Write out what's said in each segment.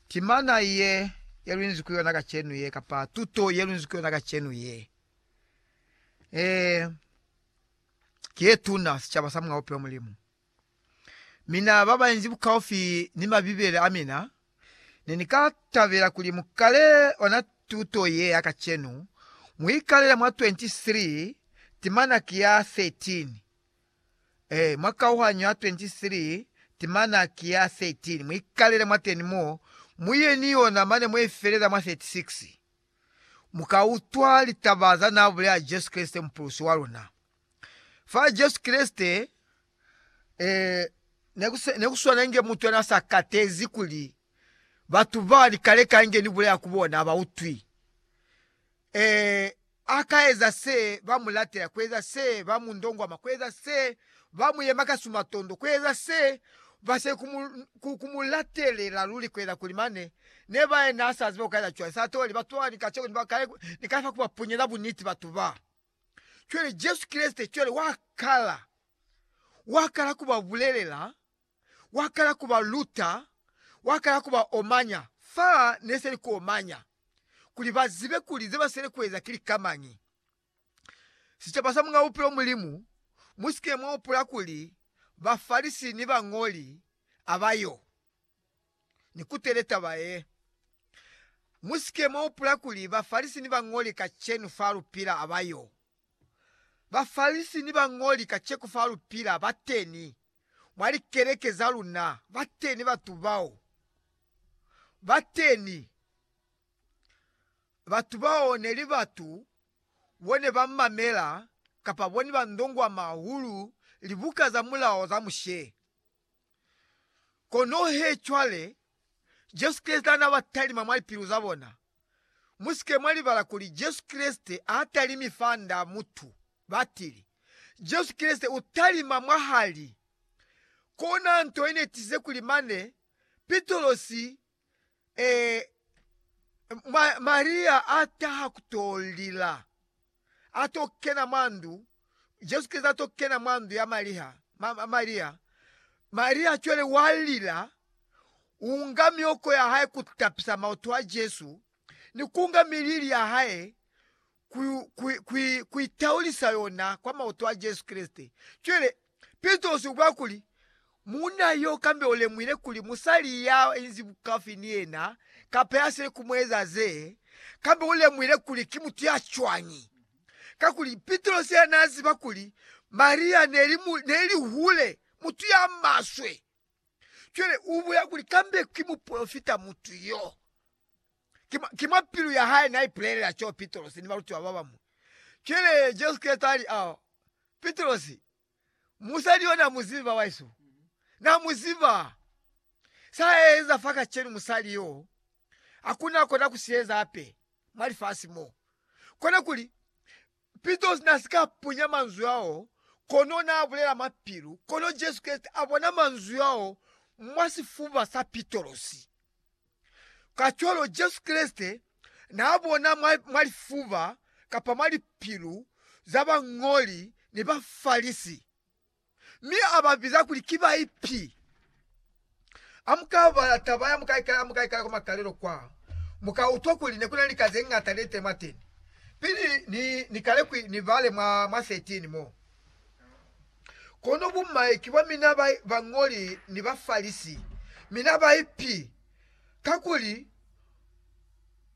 Timana ye ye lunzi ku yona kacenu ye kapa tuto ye lunzi ku yona kacenu ye e ki ye tuna sicaba sa mwa Bupilo Mulimu. Mina ba ba inzi bukaufi ni Mabibele a mina ne ni ka tabela kuli mu kale ona tuto ye ya kacenu, mu ikalele mwa 23 timana ki ya 13 Ee, mwa kauhanyo ya 23, timana ki ya 13. Mu ikalele mwateni mo, mu ye ni yona mane mwe i felela mwa 36. Mu ka utwa litaba za naa bulela Jesu Kreste, Mupulusi wa luna. Fa Jesu Kreste, ee, ne ku swanenge mutu ya naa sa katezi kuli batu ba ni kale ka nge ni bulela ku bona ba utwi. Ee, a ka eza se ba mu latela, ku eza se ba mu ndongwama, ku eza se ba mu yema ka sumatondo, ku eza se ba se ku mu, ku, ku mu latelela luli ku eza kuli mane ne ba ye na sa ziba ku ka eza cwañi. Sa toli, batu ba ni kacenu ni ba kale ni ka fa ku ba punyela buniti batu ba. Cwale Jesu Kreste cwale wa kala, wa kala ku ba bulelela. wa kala ku ba luta, wa kala ku ba omanya fa ne se li ku omanya, kuli ba zibe kuli ze ba sweli ku eza ki lika mañi. Sicaba sa Muñ'a Bupilo Mulimu, mu si ke mwa hupula kuli Bafalisi ni bañoli a ba yo ni kutele taba ye. Mu si ke mwa hupula kuli Bafalisi ni bañoli kacenu fa lu pila a ba yo. Bafalisi ni bañoli kaceku fa lu pila ba teni. Mwa likeleke za luna bateni batu bao, bateni batu bao neli batu bone ba mamela kapa bone ba ndongwama hahulu libuka za Mulao za Mushe. Kono he cwale Jesu Kreste hana ba talima mwa lipilu za bona, Musike mwa libala kuli Jesu Kreste ha talimi fanda mutu. Batili. Jesu Kreste u talima mwahali. Kona nto ye ne tize kuli mane Pitrosi, ee, Maria a taha ku to lila. a to kena mwa ndu, Jesu Kreste a to kena mwa ndu ya Maria, ma, ma, Maria, Maria cwale wa lila, unga mioko ya hae ku tapisa maoto a Jesu, ni kunga milili ya hae ku, ku, ku, ku itaulisa yona kwa maoto a Jesu Kreste. Cwale Pitrosi ubula kuli, Muuna yo kambe ulemuhile kuli musali ya inzi bukafi ni yena kapa ya sile ku mueza ze, kambe ulemuhile kuli ki mutu ya cwañi. Kakuli Pitrosi yena naaziba kuli Maria neli mu, neli hule, mutu ya maswe. Cwale ubulela kuli kambe ki mupolofita mutu yo. Ki mwa, ki mwa pilu ya hae naipulelela co Pitrosi ni balutiwa babañwi. Cwale Jesu Kreste ali, A, Pitrosi, musali yo namuzibi babahesu. Namuziba. Saeza fa kacenu musali yo, hakuna kona kusieza hape mwa lifasi mo. Konakuli, Pitos na si ka punya manzwi ao, kono na bulela mapilu. Kono Jesu Kreste a bona manzwi ao mwa sifuba sa Pitosi. Kacwalo, Jesu Kreste n'a bona mwa, mwa lifuba kapa mwa lipilu za bañoli ni Bafalisi. Mi a ba biza kuli ki baipi. Ha mu ka bala taba ya mukaikala mukaikala kwa makalelo kwa, mu ka utwa kuli ne ku na ni lika ze ñata ne te mwateni. Pili ni, ni kale ku ni bale mwa, mwa 13 mo. Kono bumai ki bwa mina ba, bañoli ni Bafalisi, mina baipi, kakuli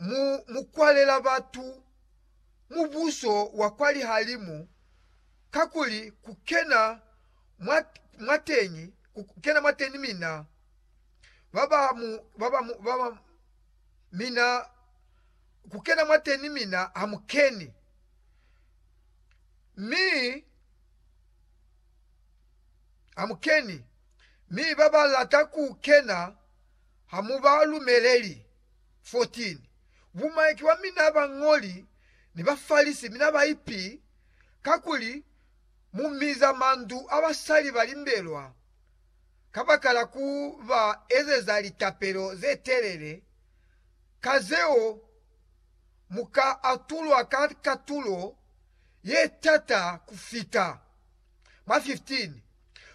mu, mu kwalela batu Mubuso wa kwa lihalimu kakuli ku kena mwa, mwa teñi, ku kena mwa teñi mina, ba ba mu, ba ba mu, ba ba, mina, ku kena mwa teñi mina ha mu keni. Mi, ha mu keni, mi ba ba lata ku kena ha mu ba lumeleli. 14 bumaiki bwa mina, Bañoli ni Bafalisi, mina baipi! kakuli mu miza mandu a basali ba limbelwa kabakala ku ba ezeza litapelo ze telele, ka zeo mu ka atulwa ka katulo ye tata ku fita. Mwa 15,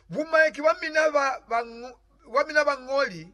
bumaiki bwa mina ba bañoli